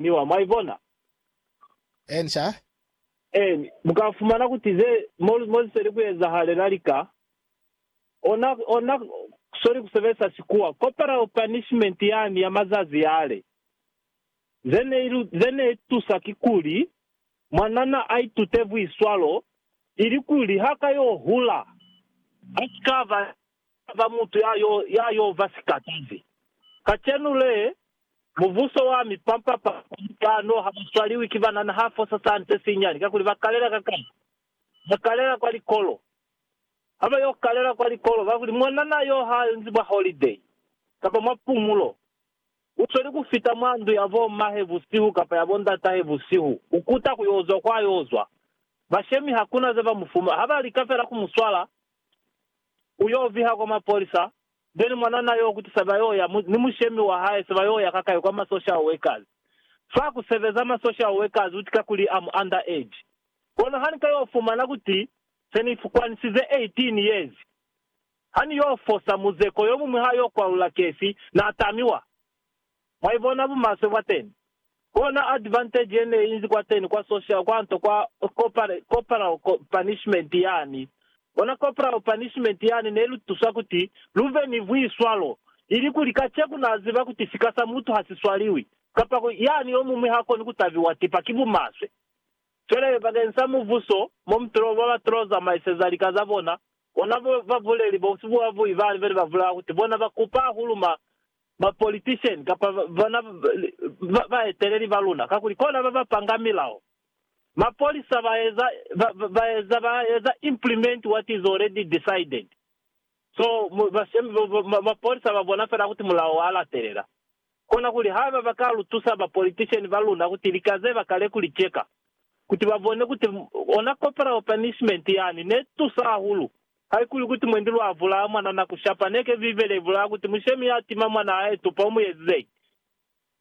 ni wa. Mwa ibona? Eeni, sha. Eeni, mu ka fumana kuti ze, mo, mo ze seli ku ezahalela lika, ona, ona soli ku sebelisa Sikuwa, corporal punishment yani ya mazazi yale. Ze ne ilu, ze ne itusa kikuli, mwanana a itute buiswalo, ilikuli ha ka yo hula, a si ka ba Taba mutu ya yo, ya yo ba sikatazi. Kacenu le, mubuso wa mipampa pampa ni kano ha ba swaliwi ki banana ha fosa sa nte sinyani, kakuli ba kalela ka kano. Ba kalela kwa likolo. Ha ba yo kalela kwa likolo, kakuli mwanana yo ha nzi mwa holiday, kapa mwa pumulo, u sweli ku fita mwa ndu ya bo mmahe busihu kapa ya bo ndatahe busihu, ku kuta ku yo zwa kwa yo zwa. Bashemi hakuna ze ba mu fumana. Ha ba lika fela ku mu swala, U yo viha kwa mapolisa, then mwanana yo kuti sa ba yo ya ni mushemi wa hae sa ba yo ya kakai kwa ma social workers. Fa ku sebeza ma social workers uti kakuli I'm under age. Kono ha ni ka yo fumana kuti se ni fukwanisize 18 years, ha ni yo fosa muzeko yo muñwi ha yo kwalula kesi, na tamiwa. Mwaibona bumaswe bwateni? Kona advantage yeneinzi kwateni kwa social kwanto kwa corporal punishment yani. Bona corporal punishment yani nelutusa kuti luve ni buiswalo, ilikuli kaceku naziba kuti sika sa mutu hasiswaliwi, kapa ku yani yomumwi hakoni kutabiwa tipa ki bumaswe. Cwale bakeng sa mubuso, momutolo babatolo zamaiseza lika zabona, bona babuleli bosi bwabuyi bali bene babulela kuti bona bakupa hahulu ma ba politician kapa bona baeteleli ba luna kakuli kona baba panga milao. Mapolisa ba eza ba eza ba eza implement what is already decided. So mapolisa ba bona fela kuti mulao wa latelela. Kona kuli haiba ba ka lu tusa ba politician ba luna kuti lika ze ba kale kuli cheka kuti ba bone kuti ona corporal punishment yani ne tusa hahulu Haikuli kuti mwendi lwa vulaa mwana na ku shapa, neke Bibele ibulaa kuti mushemi ya tima mwana a etupa u mu ezizeñi?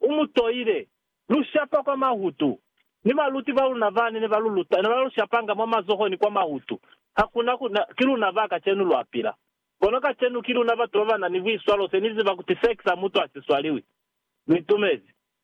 U mu toile. Lu shapa kwa mahutu. Ni baluti ba luna bani ne ba lu luta ne ba lu shapanga mwa mazoho ni kwa mahutu. Ha ku na ku na, ki luna ba kacenu lwa pila. Kono kacenu ki luna batu ba ba na ni buiswalo se ni ziba kuti sex ha mutu a si swaliwi. Lu itumezi?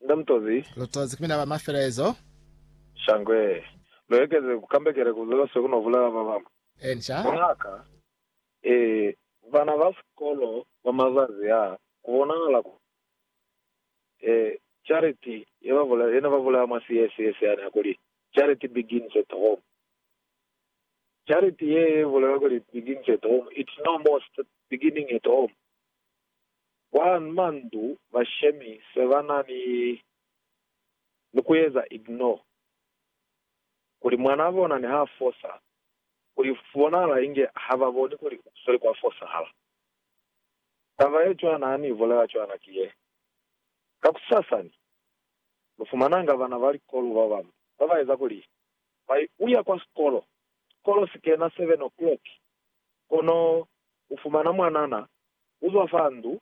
Nda Mutozi. Lutozi ki mina ba mafelezo. Shangwe. Lu ekeze ku kambekela ku zose ku no bulala ba bamwi. Enca. Ngaka. Ee, bana ba sikolo ba mazazi a, ku bonahala ku, ee, charity ye ba bula, ye ne ba bulaya mwa siesiyesi yani ya kuli, Charity begins at home. Charity ye ye bulelwa kuli begins at home, it's no more beginning at home. Kwa mandu bashemi se ba na ni ni ku eza ignore kuli mwanaa bona ni ha fosa, kuli ku bonahala inge ha ba boni kuli u sweli kwa fosahala. Taba ye cwana ha ni bulela cwana ki ye, Kakusasa ni lu fumananga bana ba likolo ba bambi ba ba eza kuli ba i uya kwa sikolo, sikolo si kena seven o'clock, Kono ufumana mwanana uzwa fa ndu,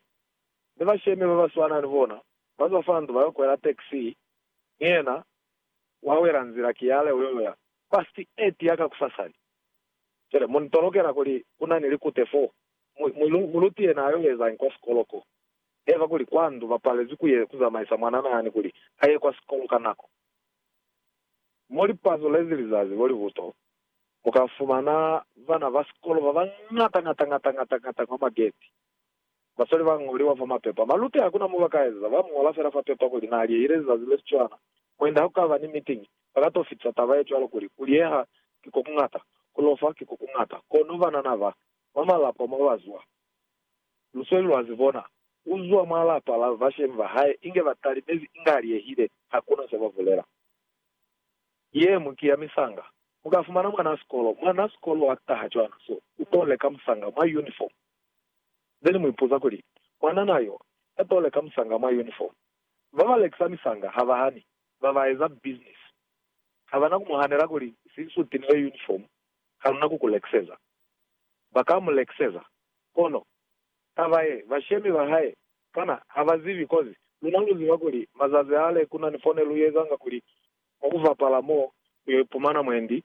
mi bashemi babaswana ni bona bazwa fa ndu bayo kwela taxi, mi yena wawela nzila kiyale uyoya. Past eight ya kakusasani. Cwale munitolokela kuli kunani likute foo. Mu, muluti yena ayo ezañi kwa sikolo ko? Neva kuli kwa ndu bapalezwi kuye kuzamaisa mwanana yani kuli aye kwa sikolo ka nako. Mo lipazo lezi lizazi lolibuto Mu ka fumana bana ba sikolo ba bañata ñata ñata ñata ñata kwa mageti. Basweli ba ñoliwa fa mapepa. Maluti ha ku na mo ba ka ezeza, ba mu ñola fela fa pepa kuli na liehile lizazi le si cwana. Mwendi ha ku ka ba ni mitingi, ba ka t'o fitisa taba ye cwalo kuli, Ku lieha ki ko kuñata, ku lofa ki ko kuñata. Kono banana ba, mwa malapa mo ba zwa, lusweli lwa zi bona, u zwa mwa lapa la bashemi ba hae inge ba talimezi inge a liehile, ha ku na se ba bulela. Ye ñwi ki ya misanga, Mu ka fumana mwanaa sikolo. Mwanaa sikolo ha taha cwana, so, u to leka musanga mwa unifomu. Nde ni mu ipuza kuli, Mwananaa yo, ya to leka musanga mwa unifomu. Ba ba lekisa misanga ha ba hani, ba ba eza bisinisi. Ha ba na ku mu hanela kuli, Si nsuti ni yo unifomu, ha lu na ku ku lekiseza. Ba ka mu lekiseza. Kono, taba ye, bashemi ba hae Kana ha ba zibi? Kozi luna lu ziba kuli mazazi ale ku na ni fone lu ezanga kuli mwa ku bapala mo lu yo ipumana mwendi.